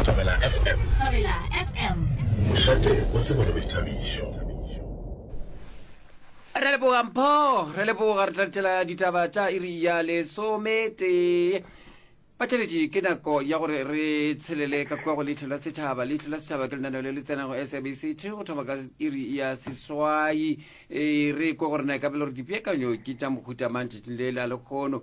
Thobela FM. Thobela FM. Mošate o tsebo le boithabišo. Re leboga Mpho, re leboga re tlatela ditaba tša iri ya lesome tee. Batšweletši ke nako ya gore re tshelele ka kua go leitlho la setšhaba leitlho la setšhaba ke lenaneo le le tsenago sabc two go thoma ka iri ya seswai e re ko gore na e ka belo gore dipeakanyo ke tša mohuta mantšatšing le la lekgono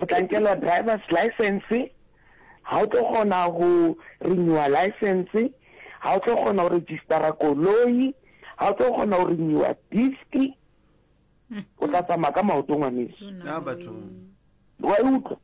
O tla nkelwa driver's license, ha o tlo kgona go renewer license, ha o tlo kgona go registera koloi, ha o tlo kgona go renewer disc, o tla tsamaya ka maoto ngwaneso. Ya batho. Wa e utlwa?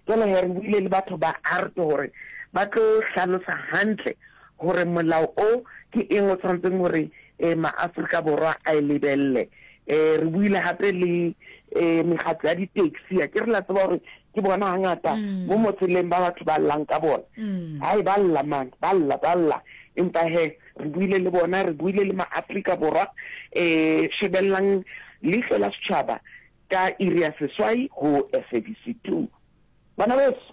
Jwale he re buile le batho ba art gore ba tlo hlalosa hantle gore molao o ke eng o tshwanetseng gore eh, ma-Afrika Borwa a e lebelele Eh, re buile gape le eh, megatlo ya di-taxi a ke re la tseba gore ke bona gangata mm. mo motseleng ba batho ba llang ka bona mm. hai ba lla man ba lla ba lla empa he re buile le bona re buile le maaforika borwa um shebelelang leitlho la setšhaba ka iri ya seswai go sabc two bana beso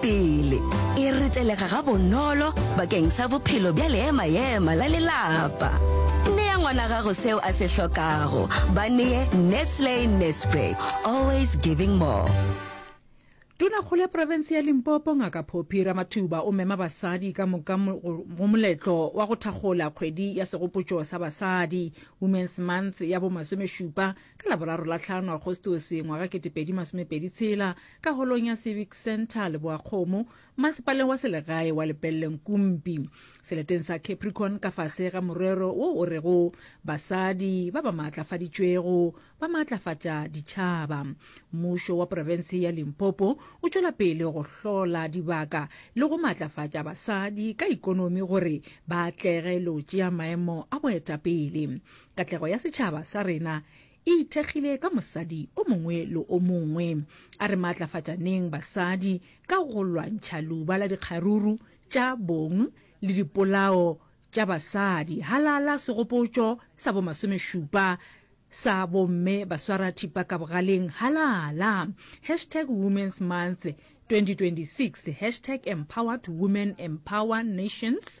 Pele, e retelega gabonolo bakeng sa bophelo bja leema-ema la lelapa. Nea ngwana gago seo a se hlokago. Ba nee Nestle Nespray, always giving more. Tonakgolo ya profense ya Limpopo Ngaka Phophi Ramathuba o mema basadi ka moka go moletlo wa go thakgola kgwedi ya segopotšo sa basadi, Women's Month, ya bo masomešupa ka Laboraro la tlhano Agostose ngwaga kete pedi masome pedi tshela ka holong ya Civic Centre Leboakgomo, masepaleng wa selegae wa Lepelleng Kumpi, seleteng sa Capricorn ka fase ga morero wo o rego Basadi ba ba maatlafaditšwego ba maatlafatša ditšhaba. Mmušo wa porofense ya Limpopo o tšwela pele go hlola dibaka le go maatlafatša basadi ka ikonomi gore ba atlege le go tšea maemo a boetapele. Katlego ya setšhaba sa rena e ithekgile ka mosadi o mongwe le o mongwe. A re maatlafatšaneng basadi ka go lwantšha luba la dikgaruru tša bong le dipolao tša basadi. Halala segopotšo sa bo masomešupa sa bomme baswara thipa ka bogaleng halala. Hashtag Women's Month 2026 Hashtag Empowered Women Empower Nations.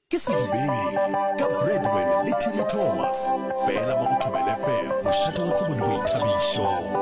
Ke Sedibeng ka Bradwell le Timi Thomas, fela mo go Thobela FM, mošate wa tsebo le boithabišo.